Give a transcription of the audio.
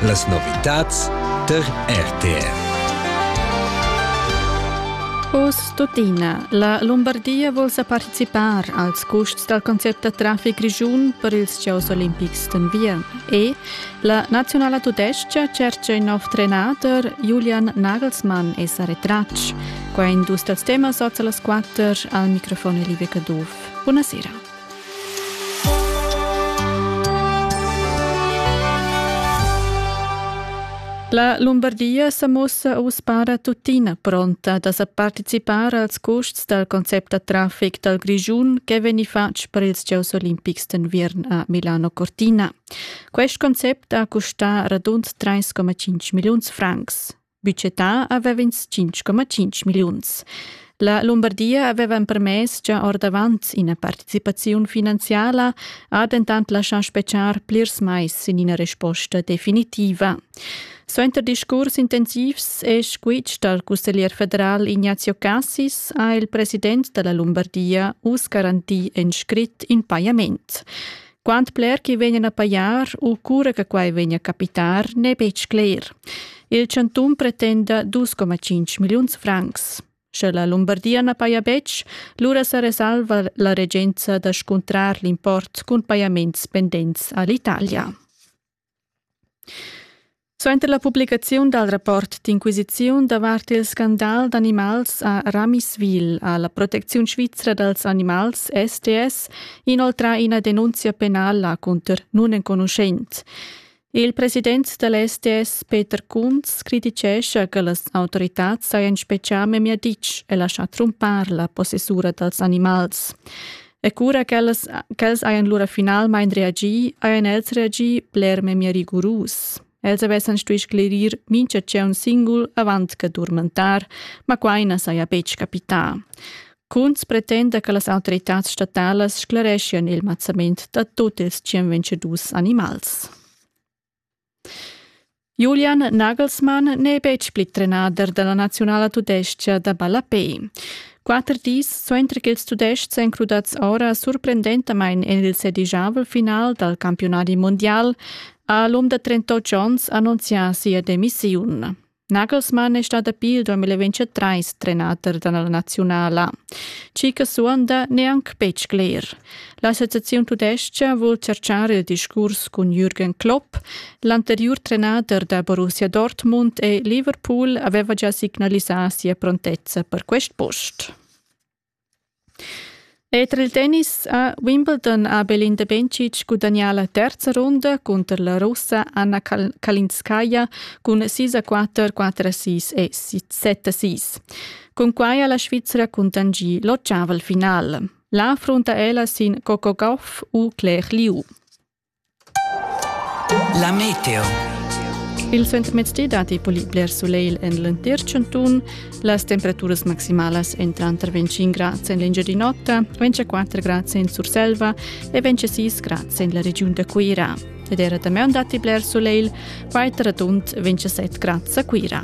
Las novitads tar RTR. Oz tuttina, la Lombardia vul sa participar als custs dal concept da traffic grischun per ils Gioss olimpics d'enviern. E la nazionala tudestga cercia in nov trenader, Julian Nagelsmann, è sa retratg. Qua è in dus dals temas oz a las quatter. Al microfon è Liebe Caduff. Buonasera. La Lumbardia sa mussa uss para tuttina pronta da sa participar als custs dal concept da traffic dal Grischun che vegni fatg per ils Gieus olimpics d'enviern a Milano Cortina. Quest concept ha custà radund 3,5 milliuns francs. Budgetà avev'ins 5,5 milliuns. La Lumbardia aveva empermess gia ordavant ina participaziun finanziala, ha dentant laschà spetgar plirs mais sin ina resposta definitiva. Suenter discurs intensivs è squitsch dal cusseglier federal Ignazio Cassis ha il president da la Lumbardia uss garantì in scrit in pajament. Quant bler che vegnan a pajar u cura che quai vegna a capitar n'è betg cler. Il chantun pretenda 2,5 milliuns francs. Sche la Lumbardia na paja betg, lura sa resalva la regenza da scuntrar l'import cun pajaments pendents a l'Italia. Suenter la publicaziun dal rapport d'inquisiziun davart il scandal d'animals a Ramiswil ha la protecziun svizra dals animals STS inoltrà ina denunzia penala cunter nunenconuschent. Il president da la STS Peter Kunz crititgescha che las autoritads sajan spetgà memia ditg e laschà trumpar la possessura dals animals. E cura ch'els, ch'els hajan lura finalmain reagì, hajan els reagì bler memia rigurus. Els avessan stuì sclerir mintga tgeun singul avant che durmentar, ma quai na saja betg capità. Kunz pretenda che las autoritads statalas sclereschian il mazzament da tut ils tschien vencedus animals. Julian Nagelsmann n'è betg pli trenader da la naziunala tudestga da ballapè. Quatter dis suenter ch'ils Tudestgs èn crudads ora surprendentamain en il sedigiavel final dal campiunadi mundial, ha l'um da trentotg onns annunzià sia demissiun. Nagelsmann è stà dapi il 2023 trenader da la naziunala. Chi che suonda neanc betg cler. L'associaziun tudestga vul cercar il discurs cun Jürgen Klopp. L'anteriur trenader da Borussia Dortmund e Liverpool aveva già signalisà sia prontezza per quest post. Era il tennis ha Wimbledon ha Belinda Bencic gudagnà la terza runda cunter la Russa Anna Kalinskaya cun sis a quatter, quatter a sis e set a sis. Cunquai ha la Svizra cuntanschì l'ottaval final. Là frunta ella sin Coco Gauff u Claire Liu. La meteo. Il suentermezdi datti pli bler sulegl en l'entir chantun. Las temperaturas maximalas èn tranter 25 grads en l'Engiadin'Ota, 24 grads en Surselva e 26 grads en la regiun da Cuira. Ed era damaun datti bler sulegl, quai tar radund 27 grads a Cuira.